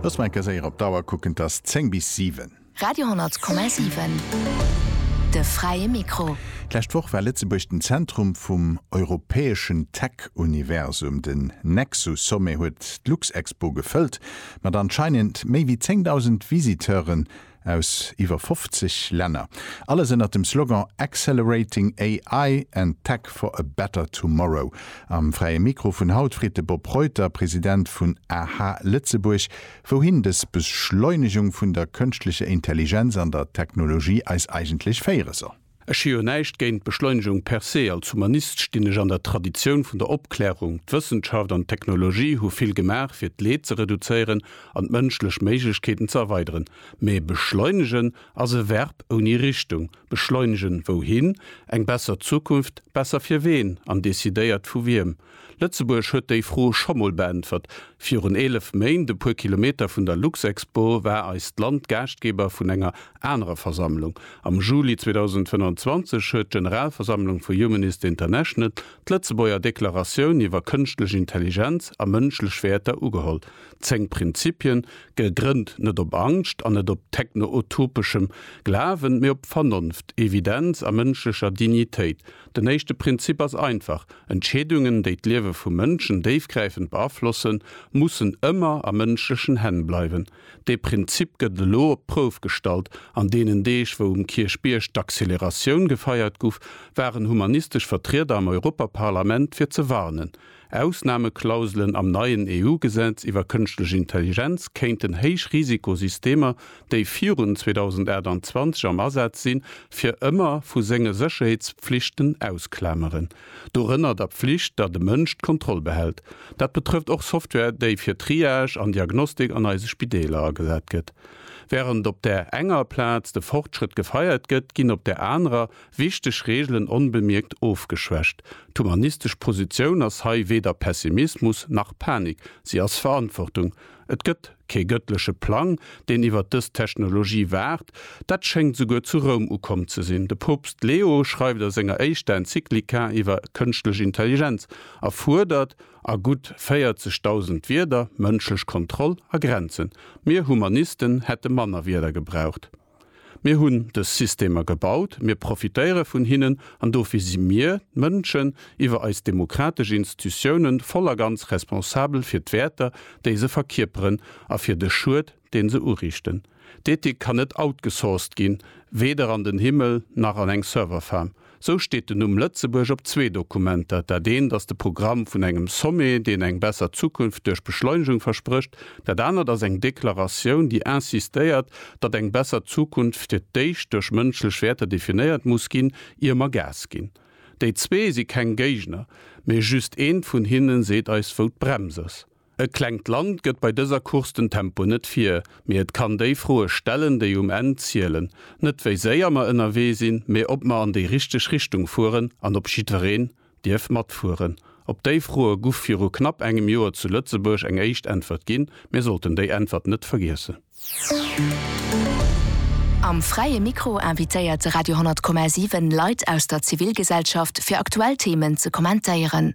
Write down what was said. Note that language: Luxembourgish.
Loosse mer eng Kéier séier op d'Auer kucken, et ass 10 bis 7. Radio 10,7, de fräie Mikro. D'lescht Woch war Lëtzebuerg den Zentrum vum europäeschen Tech-Universum. Den Nexus-Sommet huet d'Luxexpo gefëllt mat anscheinend méi wéi 10.000 Visiteuren. aus iwwer 50 Länner, alles ënnert dem Slogan Accelerating AI and Tech for a better tomorrow. Am Fräie Mikro vun haut freet de Bob Reuter, President vun aha Lëtzebuerg, wouhin dës Beschleunegung vun der kënschtlecher Intelligenz an der Technologie eis eigentlech féiere soll. Ech hu jo näischt géint d'Beschleunegung per se. Als Humanist stinn ech an der Traditioun vun der Opklärung. D'Wëssenschaft an d'Technologie hu vill gemaach, fir d'Leed ze reduzéieren an d'mënschlech Méiglechkeeten ze erweideren. Mee beschleunegen ass e Verb ouni Richtung. Beschleunegen wouhin? Eng besser Zukunft? Besser fir ween an decidéiert vu wiem? Lëtzebuerg huet déi Fro scho mol beäntwert. Virun 11 Méint, e puer Kilometer vun der Luxexpo, war eist Land Gaaschtgeber vun enger anerer Versammlung. Am Juli 2025 huet d'Generalversammlung vu Humanist International d'Lëtzebuerger Deklaratioun iwwer Kënschtlech Intelligenz a mënschlech Wäerter ugeholl. Zéng Prinzipien, gegrënnt net op Angscht an net op techno-utopeschem Glawen, mee op Vernonft, Evidenz a mënschlecher Dignitéit. Den éischte Prinzip ass einfach, Entscheedungen, déi d'Liewe vu Mënschen déifgräifend beaflossen, mussen ëmmer a mënschlechen Hänn bleiwen. Dee Prinzip gëtt elo op d'Prouf gestallt. An deenen Deeg, wou um Kierchbierg d'Acceleratioun gefeiert guff, waren humanistesch Vertrieder am Europaparlament fir ze warnen. Ausnameklauselen am neien EU-Gesetz iwwer kënschtlech Intelligenz kéinten héich Risikosystemer, déi virun 2028 am Asaz sinn, fir ëmmer vu senge Sécherheetspflichten ausklameren. Dorënner der Pflicht, datt e Mënsch d'Kontroll behält. Dat betrëfft och Software, déi fir Triage an Diagnostik an eise Spideeler agesat gëtt. Wärend op där enger Plaz de Fortschrëtt gefeiert gëtt, ginn op där anerer Wichteg Reegelen onbemierkt ofgeschwächt. D'humanistesch Positioun ass hei weder Pessimismus nach Panik, si ass Verantwortung. Et gëtt kee gëttleche Plang, deen iwwer dës Technologie waacht. Dat schéngt souguer zu Roum ukomm ze sinn. De Poopst Leo schreift a senger éischter Enzyklika iwwer kënschtlech Intelligenz a fuerdert a gutt 40.000 Wierder mënschlech Kontroll a Grenzen. Mir Humanisten hätte manner Wierder gebraucht. Mir hunn dës Systemer gebaut, mir profitéiere vun hinnen an dofir si mir, d'Mënschen, iwwer eis demokratesch Institutiounen voll a ganz responsabel fir d'Wäerter, déi se verkierperen a fir de Schued, dee se uriichten. D'Ethik kann net outgesourced ginn, weder an den Himmel nach an eng Serverfarm. Sou steet den Numm Lëtzebuerg op zwee Dokumenter, dat eent ass de Programm vun engem Sommet, deen eng besser Zukunft duerch Beschleunegung versprécht, dat anert ass eng Deklaratioun, déi insistéiert, datt eng besser Zukunft fir d'éischt duerch mënschlech Wäerter definéiert muss ginn, ier mer Gas ginn. Déi zwee si keng Géigner, mee just eent vun hinne seet eis, wou d'Brems ass. E klengt Land gëtt bei dëser Course den Tempo net vir, mee et kann déi Froe stellen, déi um Enn zielen. Net wéi séier mer ënnerwee sinn, mee ob mer an déi richteg Richtung fueren an ob jiddwereen dierf matfueren. Op déi Froe guff viru knapp engem Joer zu Lëtzebuerg eng éischt Äntwert ginn. Mir sollten déi Äntwert net vergiessen. Am Fräie Mikro invitéiert de Radio 10,7 Leit aus der Zivilgesellschaft, fir aktuell Themen ze kommentéieren.